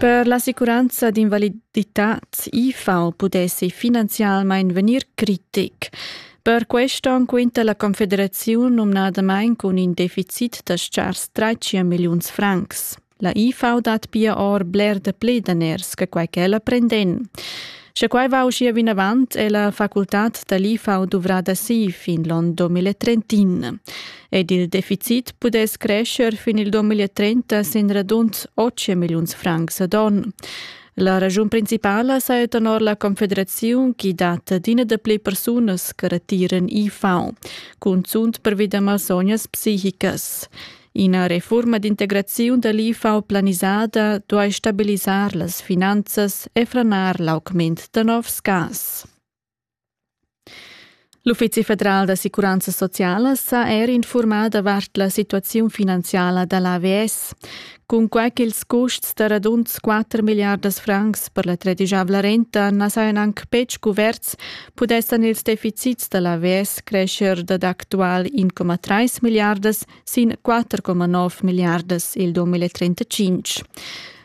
Per l'assicuranza d'invaliditad IFAO pudessi finanzialmein vegnir critic. Per questo quinta la Confederazione numnadamain cun in deficit da schars 13 milliuns francs. La IFAU dat pia or bler dapli daners che quai ch'ella prenden. Sche quai va uschia vinavant, è la facultad da l'IFAU duvrada si fin l'on 2030. Ed il deficit pudess crescer fin il 2030 sin radund 8 milliuns francs ad on. La ragiun principala saja tenor la Confederaziun chi dat adina dapli persunas che retiran IFAU, cunzunt pervi da malsognas psichicas. Ina refurma d'integraziun da l'IFAO planisada duai stabilisar las finanzas e franar l'augment da novs gas. L'Uffizi federal d'assicuranza sociala s'ha er informat davart la situaziun finanziala da l'AVS. Cunquai ch'ils custs da radund 4 milliardas francs per la tredisavla renta na sajan anc betg cuverts, pudessan ils deficits da l'AVS crescher dad actual 1,3 milliardas sin 4,9 milliardas il 2035.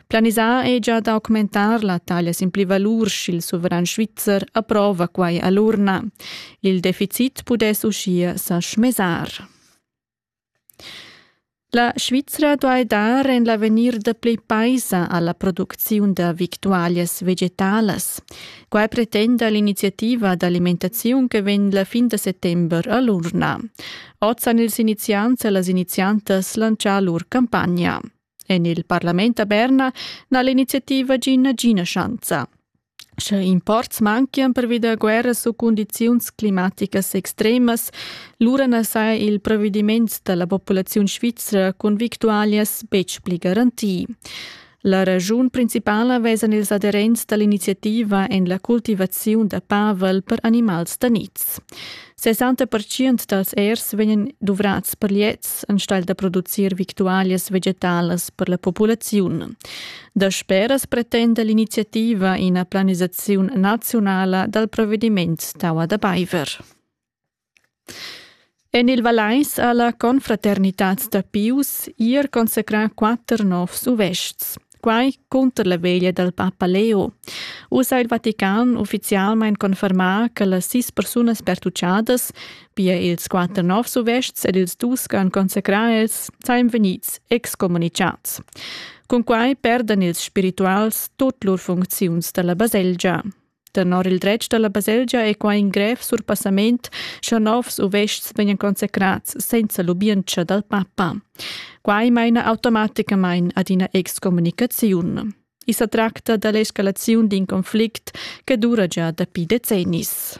Planisà è già documentar la taglia sin pli valur sch'il suveran svizzer approva quai a l'urna. Il deficit pudess uschia sa schmesar. La Svizra duai dar en l'avegnir da play paisa alla producziun da victualias vegetalas. Quai pretenda l'iniziativa d'alimentaziun che vegn la fin da settember a l'urna. Oz han ils iniziants e las iniziantas lantschà lur campagna. En il parlament a Berna n'ha l'iniziativa gì nagina schanza. Sche imports manchian pervi da guerras u cundiziuns climaticas extremas, lura na saja il provvediment da la populaziun svizra cun victualias betg pli garantì. La raschun principala vesan ils aderents dall'iniziativa en la cultivaziun da pavel per animals da niz. 60% dals ers vegnan duvrats per liets enstagl da producir victualias vegetalas per la populaziun. Dasperas pretenda l'iniziativa ina planisaziun nazionala dal provvediment Taua da Baiver. En il Valeis ha la confraternitad da Pius ier consacrà quatter novs uvestgs. Quai cunter la veglia dal papa Leo. Uss ha il Vatican uffizialmain confermà che las sis persunas pertuchadas, pia ils quatter novs uvestgs ed ils dus che han consacrà els, sajan vegnids excommunicads. Cun quai perdan ils spirituals tut lur funcziuns da la baselgia. Tenor il dretg dalla baselgia è quai in grev surpassament, sche novs uvests vegnan consecrads senza lubientscha dal papa. Quai maina automaticamain ad ina excommunicaziun. I sa tracta da l'escalaziun d'in conflict che dura gia dapi decennis.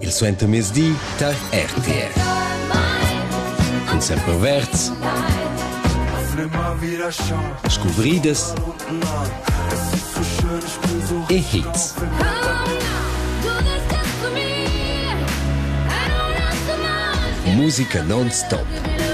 Il suentermezdi tar RTR. Cun Semper Verds. Scuvridas. E hits. Musica non-stop.